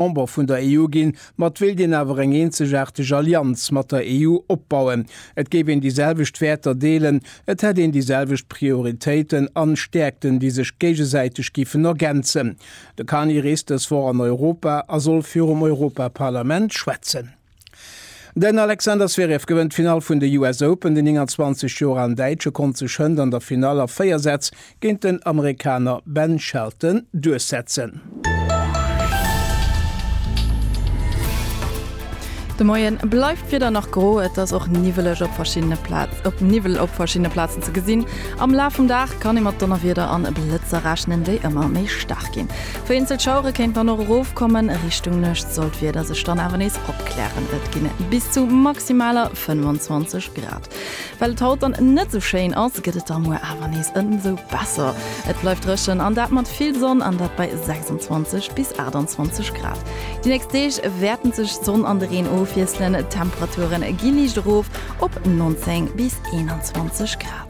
Member vun der EU ginn, mat wéilt een awer eng eenzegaarteg Allianz mat der EU opbauen. Et géif een déi selwecht Wäerter deelen, et hätt een déi selwecht Prioritéiten an Stäerkten, déi sech géigesäiteg giffen ergänzen. De Carney reest dës Woch an Europa a soll virum Europaparlament schwätzen. Den Alexander Zverev gewënnt d'Finall vun de US Open. Den 29 Joer alen Däitsche konnt sech hënt an der Finall a 4 Sätz géint den Amerikaner Ben Shelton duerchsetzen. De Moien bleift d'Wieder nach gro, et ass och niwweleg op verschiddene Plaz op Niwwel op verschiddene Plazen ze gesinn. Am Laf vum Dag kann ee mat Donnerwieder an Blëtzer rechnen, déi ëmmer méi staark ginn. Vereenzelt Schauere kéint dann och erofkommen, Richtung Nuecht soll d'Wieder sech dann awer nees opklären. Et ginn bis zu maximaler 25 Grad. Well et haut dann net esou schéin ass, gëtt et da muer awer nees ëmsou besser. Et bleift dréchen an dat mat vill Sonn, an dat bei 26 bis 28 Grad. Déi nächst Deeg wäerten sech d'Sonn an de Reen ofwiesselen, d'Temperature gi liicht erof op 19 bis 21 Grad.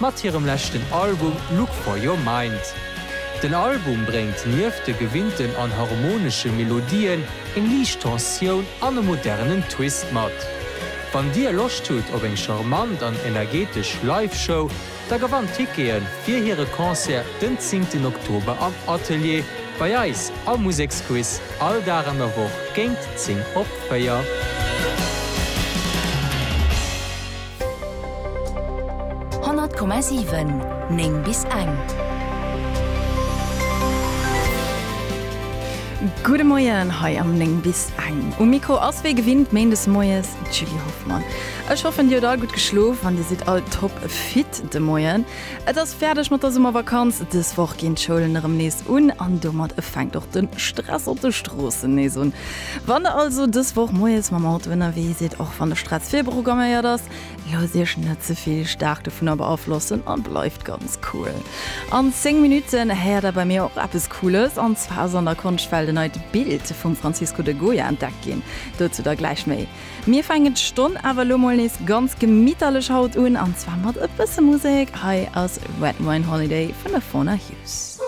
mat hirem leschten Album Look For Your Mind. Den Album bréngt nieft de gewinnten an harmonesche Melodien eng liicht Tensioun an e modernen Twist mat. Wann dir Loscht hutt op eng charmant an energetesch Live-Show, da gewannt Tickete fir hire Concert den zéngten Oktober am Atelier bei eis am Museksquiz all Dag an der Woch géint 10 op 4. 100,7 9 bis eng. Gudde Moien hei am 9 bis eng. Um Mikro ass wéi gewinnt méindes moies d'Julie Hoffmann. Ech hoffen, Dir hutt all gutt geschlof an Dir sidd all top fit de Moien. Et ass fäerdeg mat der Summervakanz. Dës Woch ginn d'Schoulen erëm nees un an domat fänkt och de Stress op de Stroossen nees un. Wann der also dës Woch moies mam Auto ënnerwee sidd, och wann de Stress virprogramméiert ass, loosst Iech net ze vill staark dovunner beaflossen a bleift ganz cool. An 10 Minutten héiert der bei mir och eppes Cooles, an zwar ass an der Konschtwelt en neit Bild vum Francisco de Goya entdeckt ginn. Dozou da gläich méi. Mir fänken d'Stonn awer elo mol nees ganz gemitterlech haut un, an zwar mat e bësse Musek. Hei ass Red Wine Holiday vun der Fauna Hughes.